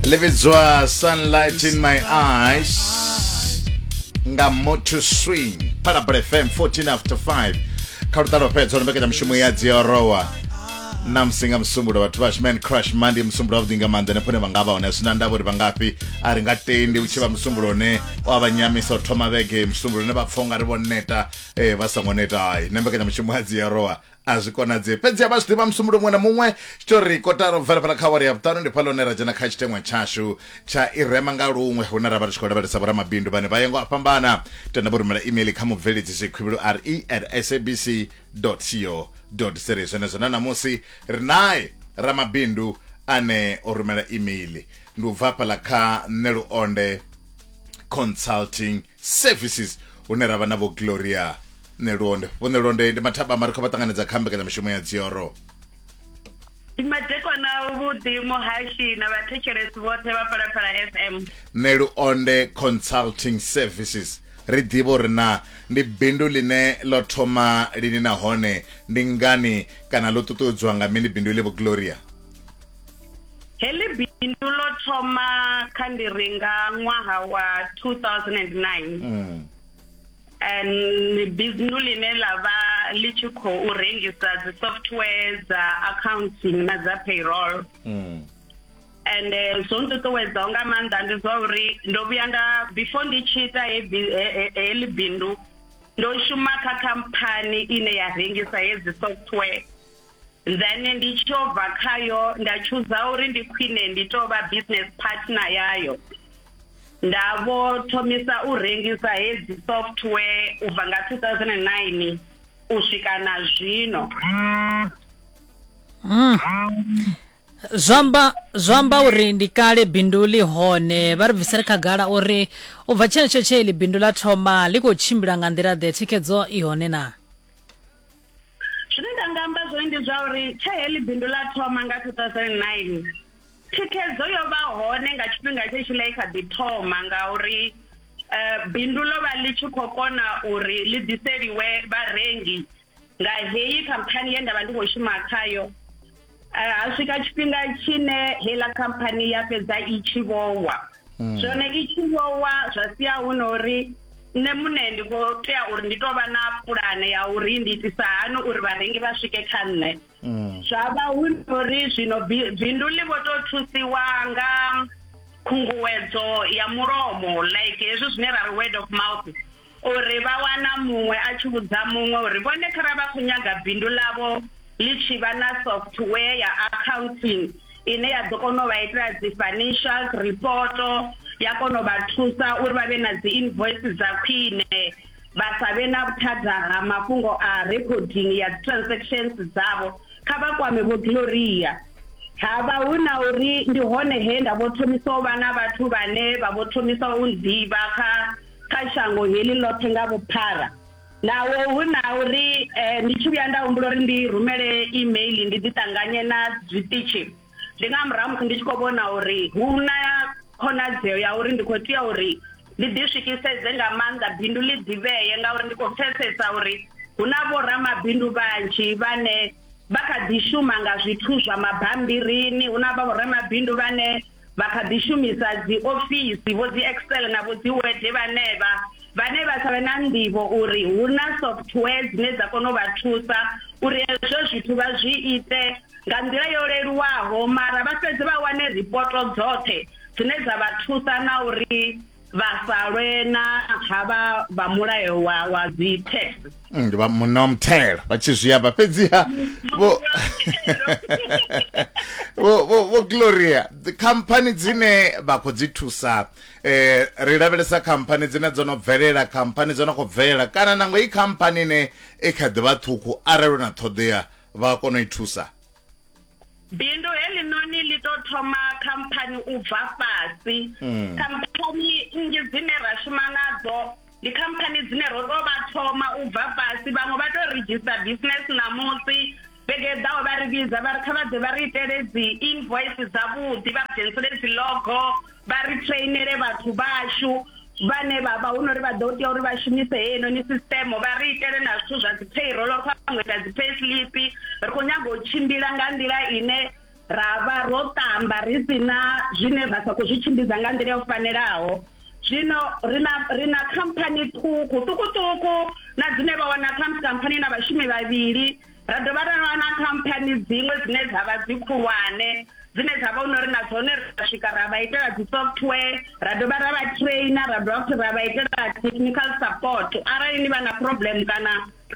ḽivhidzwa sunlight in my eyes nga motor swing phalabra fm 14 after 5 kha luṱalo fhedza lombekedza mushumo ya dziorowa na musi nga musumbulo vhathu vha shman crush mandi musumbulo wavhuḓi nga maanḓa nefhone vha nga vha hone sina ndavha uri vha ngafhi a ri nga tendi u tshi vha musumbulo une wa vha nyamisa u thoma vhege musumbulo une vha pfha unga ri vho neta eh vha songo neta hai na mbekanyamushumo ya dziorowa a zwi konadzei fhedzi a vha zwi ḓivha musumbulo muṅwe na muṅwe tshitori kotaro bvela fhala kha wari ya vhuṱanu ndi phala hune ra dzhena kha tshiteṅwa tshashu tsha i rema nga luṅwe hune ra vha ri tshi khou lavhelesa vhoramabindu vhane vha yengo a fhambana tenda vho rumela email kha mubveledzi zwikhuvhilu re at sabc co za zwenezwo na ṋamusi ri nae ramabindu ane o rumela email ndi u bva fhala kha nṋe luonde consulting services hune ra vha na vho gloria nelonde vho nelonde ndi mathaba mari kha vha ṱanganedza kha mbekanyamushumo ya dzioro madekwana vhuḓi muhashi na vhathetshelesi vhoṱhe vha phalaphala fm nelonde consulting services ri ḓivha uri na ndi bindu line ḽo thoma lini nahone ndi ngani kana ḽo ṱuṱuwedzwa nga mini bindu iḽi vho gloria Heḽi bindu ḽo thoma kha ndi ri nga ṅwaha wa 2009 mm. and biznu ḽine ḽa vha ḽi tshi khou rengisa dzi software dza accounting na dza payroll mm. and eh, zwo nṱuṱuwedzaho nga maanḓa ndi zwa uri ndo vhuya nda before ndi tshi ita heḽi bindu ndo shuma kha khamphani ine ya rengisa hedzi software Then ndi tshi yo bva khayo nda chooser uri ndi khwine ndi to vha business partner yayo. Nda vho thomisa u rengisa hedzi software u bva nga 2009 u swika na zwino. zwamba zwamba uri ndi kale bindu ḽi hone vha ri bvisele khagala uri u bva tshenetsho tshe ḽi bindu ḽa thoma ḽi khou tshimbila nga nḓila ḓe thikhedzo i hone na Zwine nda nga amba zwone ndi zwa uri tshe heḽi bindu ḽa thoma nga 2009 thikhedzo yo vha hone nga tshifhinga tshe tshi ḽa kha ḓi thoma nga uri eh, bindu ḽo vha ḽi tshi khou kona uri ḽi ḓiseliwe vharengi nga heyi khamphani ye nda vha ndi khou shuma khayo Eh, ha swika tshifhinga tshine heiḽa khamphani ya fhedza i tshi vhowa hmm. zwone i tshi vhowa zwa sia hu na uri nṋe muṋe ndi khou tea uri ndi tou vha na pulane ya uri ndi itisa hani uri vharengi vha swike kha nṋe hmm. zwa vha hu na uri zwino bindu ḽi vho tou thusiwa nga khunguwedzo ya mulomo like hezwi zwine ra ri word of mouth Uri vha wana muṅwe a tshi vhudza muṅwe uri vhone kharali vha khou nyaga bindu ḽavho ḽi tshi vha na software ya accounting ine ya ḓo kona u vha itela dzi financial report ya kona u vha thusa uri vha vhe na dzi invoice dza khwine vha sa vhe na vhuthada ha mafhungo a recording ya dzi transactions dzavho kha vha kwame vho Gloria havha hu na uri ndi hone he nda vho thomisa u vha na vhathu vhane vha vho thomisa u nḓivha kha kha shango heḽi ḽoṱhe nga vhuphara naho hu na uri eh, ndi tshi vhuya nda humbula uri ndi rumele email ndi ḓi ṱanganye na zwiṱitshi ndi nga murahu musi ndi tshi khou vhona uri hu na khonadzeo ya uri ndi khou tea uri ndi ḓi swikiseze nga maanḓa bindu ḽi ḓivhee ngauri ndi khou pfesesa uri hu na vhoramabindu vhanzhi vhane vha kha ḓi shuma nga zwithu zwa mabambirini hu na vhoramabindu vhane vha kha ḓi shumisa dzi ofisi vho dzi excel na vho dzi word vhanevha vhane vha sa vhe na nḓivho uri hu na software dzine dza kona u vha thusa uri hezwo zwithu vha zwi ite nga nḓila yo leluwaho mara vha fhedze vha wane ripoto dzoṱhe dzine dza vha thusa na uri vha sa lwe na havha vha mulayo wa wa dzi tax mm, ndi vha munna wa muthelo vha tshi zwi amba fhedziha vho vho gloria khamphani dzine vha khou dzi thusa eh ri lavhelesa khamphani dzine dzo no bvelela khamphani dzo no khou bvelela kana nango i khamphani ine i kha ḓi vha ṱhukhu arali na ṱhoḓea vha kona u i thusa bindu heḽinoni ḽi to thoma khamphani u bva fhasi mm. khamphani nnzhi dzine ra shuma nadzo ndi khamphani dzine ro to vha thoma u bva fhasi vhaṅwe vha to register business ṋamusi vhege ḓaho vha ri vhidza vha ri kha vha ḓe vha ri itele dzi invoice dzavhuḓi vha dzhenisele dzi logo vha ri trainele vhathu vhashu vhane vha vha hu no ri vha ḓo tea uri vha shumise heinoni system vha ri itele na zwithu zwa dzi payroll kha vhaṅwe ita dzi pay slip ri khou nyaga u tshimbila nga nḓila ine ra vha ro ṱamba ri si na zwine ra sa khou zwi tshimbidza nga nḓila yo fanelaho zwino ri na ri na khamphani ṱhukhu ṱhukhuṱhukhu na dzine vha wana kha khamphani na vhashumi vhavhili ra dovha ra vha na khamphani dziṅwe dzine dza vha dzi khulwane dzine dza vha uri na dzone ra swika ra vha itela dzi software ra dovha ra vha trainer ra dovha futhi ra vha itela technical support arali ni vha na problem kana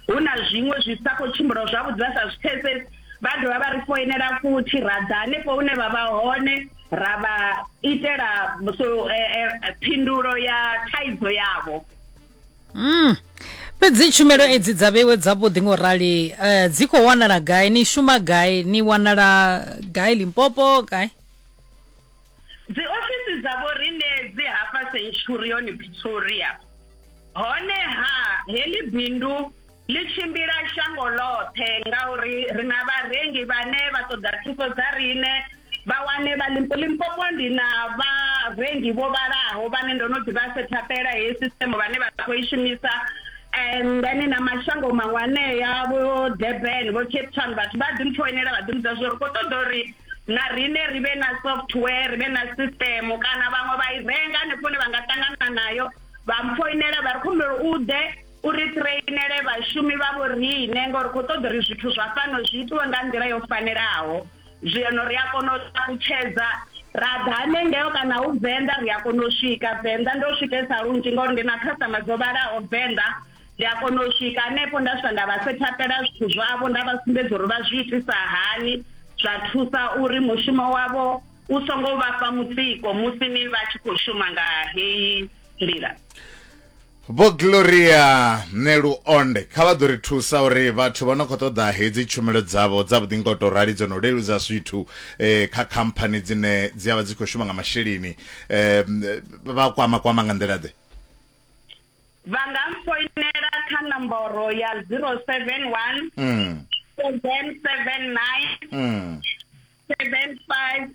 hu na zwiṅwe zwi sa khou tshimbila zwavhuḓi vha sa zwi pfesesi vha dovha vha ri foinela futhi ra ḓa hanefho hune vha vha hone ra vha itela so eh, eh, phindulo ya thaidzo yavho mm. fhedzi tshumelo edzi dza vhewe dzavhuḓi ngo rali um eh, dzi khou wanala gai ni shuma gai ni wanala gai limpopo gai dzi ofisi dzavho rine dzi hafha centurion pretoria honeha heḽi bindu Ḽi tshimbila shango ḽoṱhe ngauri ri na vharengi vhane vha ṱoḓa thuso dza riṋe. Vha wane vha Limpo Limpopo ndi na vharengi vho vhalaho vhane ndo no ḓi vha setha pela heyi sisiṱeme vhane vha khou i shumisa and then na mashango maṅwe anea vho Durban vho Cape Town vhathu vha ḓi mpfoinela vha ḓi mbudza zwo ri kho ṱoḓa uri na riṋe ri vhe na software ri vhe na sisiṱeme kana vhaṅwe vha i renga hanefho hune vha nga ṱangana nayo vha mpfoinela vha ri khumbelo u ḓe u ri ṱireinele vhashumi vha vhoriṋe ngori kho ṱoḓa uri zwithu zwa fhano zwi itiwe nga nḓila yo fanelaho zwino ri a kona u ṱalutshedza ra ḓa hanengeo kana hu venḓa ri a kona u swika venḓa ndo swikesa lunzhi ngauri ndi na khasitama dzo vhalaho venḓa ndi a kona u swika hanefho nda swika nda vha sethapela zwithu zwavho nda vha sumbedza uri vha zwi itisa hani zwa thusa uri mushumo wavho u songo vhafha mutsiko musi ni vha tshi khou shuma nga heyi nḓila Vho Gloria Neluonde kha vha ḓo ri thusa uri vhathu vha no khou ṱoḓa hedzi tshumelo dzavho dza vhuḓi ngo tou rali dzo no leludza zwithu eh, kha khamphani dzine dzi a vha dzi khou shuma nga masheleni eh, vha kwama kwama nga nḓila ḓe vha nga mfoinela kha nomboro ya 071 mm. 779 mm. 75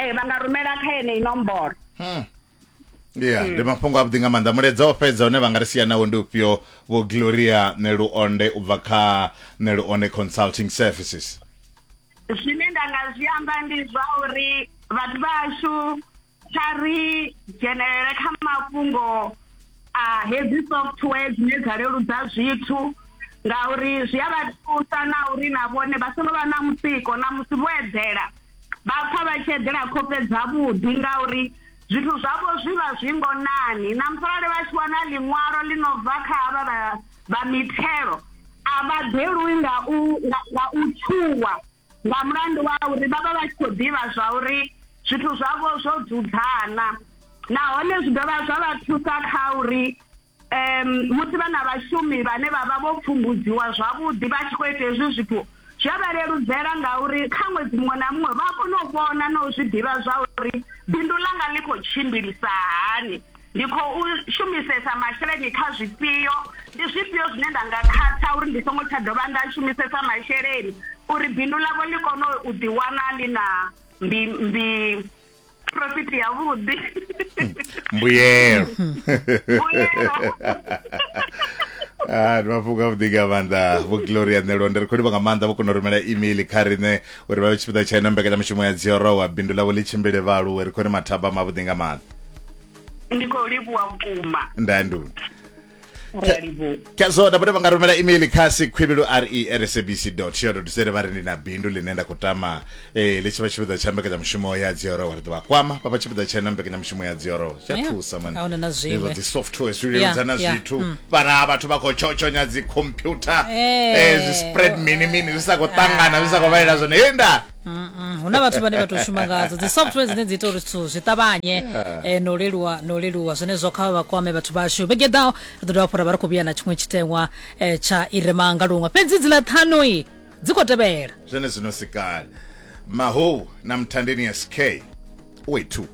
ee vha nga rumela kha yeneyi nomboro hmm. ya hmm. ndi mafhungo avhuḓi nga maanḓa mulaedza o fhedza une vha nga ri sia nawo ndi ufhio vho gloria neluonde u bva kha neluonde consulting services zwine nda nga zwi amba ndi zwa uri vhathu vhashu kha ri dzhenelele kha mafhungo a hedzi software dzine dza leludza zwithu ngauri zwi a vha thusa na uri na vhone vha songo vha na mutsiko na musi vho eḓela vha pfha vha tshi eḓela khofhe dzavhuḓi ngauri zwithu zwavho zwi vha zwi ngonani na musi arali vha tshi wana ḽiṅwalo ḽi no bva kha havha vha vha mithelo a vha ḓelwi nga u nga u tshuwa Nga mulandu wa uri vha vha vha tshi khou ḓivha zwa uri zwithu zwavho zwo dzudzana nahone zwi dovha zwa vha thusa kha uri um musi vha na vhashumi vhane vha vha vho pfumbudziwa zwavhuḓi vha tshi khou ita hezwi zwithu zwi a vha leludzela ngauri kha ṅwedzi muṅwe na muṅwe vha a kona u vhona na u zwi ḓivha zwa uri bindu ḽanga ḽi khou tshimbilisa hani. Ndi khou shumisesa masheleni kha zwifhio? Ndi zwifhio zwine nda nga khatha uri ndi songo tsha dovha nda shumisesa masheleni uri bindu ḽavho ḽi kone u ḓiwana ḽi na mbi mbi profit yavhuḓi? Mbuyelo. Mbuyelo. Ah, ndi mafhungo a vhuḓi nga maanḓa vho gloria ṋelo ndi ri khou livha nga maanḓa vho kona u rumela email kha riṋe uri vha vhe tshipiḓa tsha ino mbekanyamushumo ya dziorowa bindu ḽavho ḽi tshimbile vha aluwe ri khou ri mathaba mavhuḓi nga maanḓa ndi khou livhuwa vhukuma ndandu ndi a livhuwa kha zwo nda vha nga rumela email kha sikhwilulu r e r s b c co za vha ri ndi na bindu ḽine nda khou tama eh, ḽi tshi vha tshipiḓa tsha mbekanyamushumo ya dzioro wa ri ḓo vha kwama vha vha tshipiḓa tshena mbekanyamushumo ya dzioro zwi a Yeah. thusa man. Ahuna na zwiṅwe. Hezwo dzi software zwi Yeah, leludza na yeah, zwithu mm. vhana vhathu vha khou tshotshonya dzi computer Eh. eh, zwi spread mini mini zwi sa khou ṱangana zwi sa khou vhalela zwone henda Mm, mm. hu na vhathu vhane vha tou shuma ngadzo dzi software dzine dzi ita uri zwithu zwi ṱavhanye eh, no leluwa no leluwa zwenezwo kha vha kwame vhathu vhashu vhege ḓaho ri ḓo dovha fhora vha ri khou vhuya na tshiṅwe tshiteṅwa eh, tsha i re manga luṅwe fhedzi dziḽa ṱhanoi dzi khou tevhela zwene zwino sikala mahou na mthandeni sk way 2